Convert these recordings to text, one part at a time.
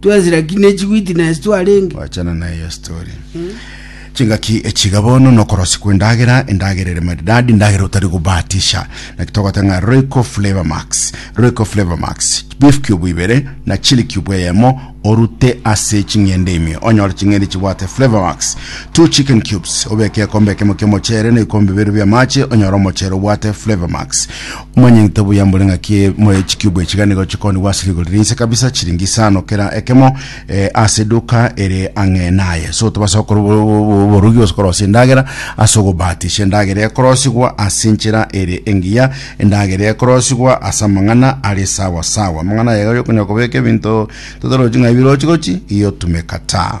Twesira ki ne chigwiti na ase twarenge? Gwachana naye ase tore. Chingaki echiga bono nokorosi kw'endagera, endagera ere maridadi, endagera otari gobahatisha. Naki togoteba ng'a Royco Flavour Max, Royco Flavour Max, beef cube ibere na chili cube eyemo orute ase ching'ende ime onyore ching'ende chibwate Flavour Max. Two chicken cubes obeke ekombe ekemo ki'omochere na ebikombe bibere bi'amache onyore omochere obwate Flavour Max. Monyegte buya mbore ng'aki moe chicube echi iga nigo chikonigwa ase rigori ria inse kabisa chiringi isano kera ekemo eh, ase eduka ere ang'e naye so tobasa gokora obo- obo- obo- oborogi gose korosia endagera ase ogobatisha endagera ekorosigwa ase enchera ere engiya endagera ekorosigwa ase amang'ana are sawa sawa amang'ana aya iga oyokonyora kobeka ebinto totorochi ng'a ebi rochi gochi iyotumeka ta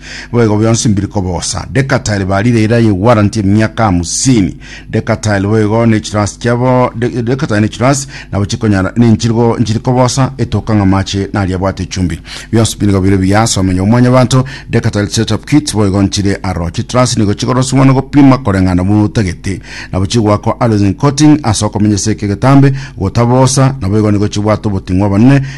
Boigo bionsi mbiri koba obosa. Decatile barire era ye warranty emiaka hamsini. Decatile boigo ne chirasi chiabo de- Decatile ne chirasi nabo chikonyara ninchirigo nchiri koba osa etoka ng'a amache naria abwate echumbi. Bionsi bi nigo bire buya ase omenyo bw'omwanyabanto. Decatile setup kit boigo nchire aro. Chitrasi nigo chikoroswa na gopima koreng'ana buna otagete. Nabo chigoakwa alloys and coating ase okomenyesa eke egetambe gotaba obosa. Naboigo nigo chibwate oboting'u abanene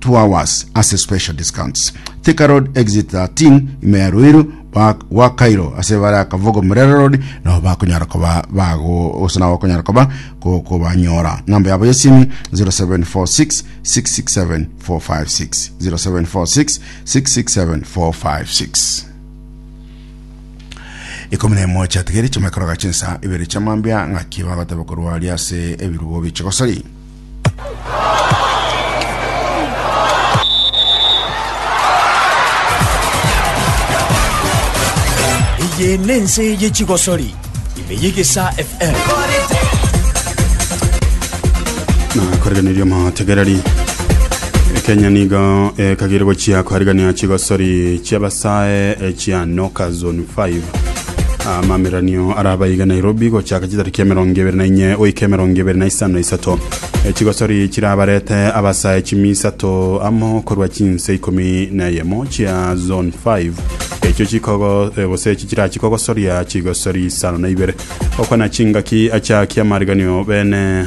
two hours ase special discounts. Thika Road exit 13 ime ya Ruiru ba- gwa Cairo ase bare akavogo Murera Road nabo bakonyara koba bago gose nabo bakonyara koba ko- kobanyora namba yabo yesimi 0746 667 456 0746 667 456 ikumi na emo chiatigere chimekoroga chinsa ibere chiamambia ng'aki bagoteba korwa ase ebirubo bichigosori Eye nense ye chigosori ime y'egesa FM. na koreganeria amategereri kenya nigo ekagire gochia koarigania chigosori chiabasae chia noka zone 5 amameranio araba iga nairobi gochaka chitariki emerongo ebere na inye goika emerongo ebere na isano na isato E, chigosori chirabarete abasae chimi isato amo korwa chinse ikomi na eyemo chia zone 5 echio chikogo e, gose echi chirachikogosoria chigosori isano na ibere okwana chingaki achakia amariganio bene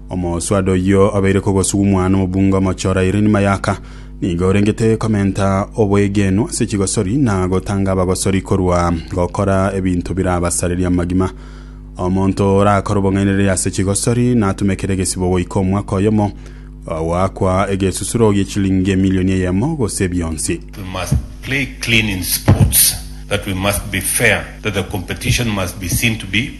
Omoswaado oyio obeire kogosugumwa nomobunga omochora Irene Mayaka nigo orengete komenta oboegenu ase chigosori na gotanga abagosori korwa gokora ebinto birabasareria amagima. Omonto orakore obong'ainereria ase chigosori natumekere egesibo goika omwaka oyomo goakwa egesusuro gie chilingi emilioni eyemo gose bionsi. We must play clean in sports, that we must be fair, that the competition must be seen to be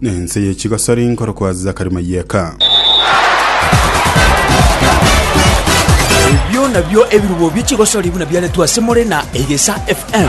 Nense ye chigosori nkorokwa Zakari Mayeka. Ebio nabio ebirubo bie chigosori buna biaretwe ase more na Egesa FM.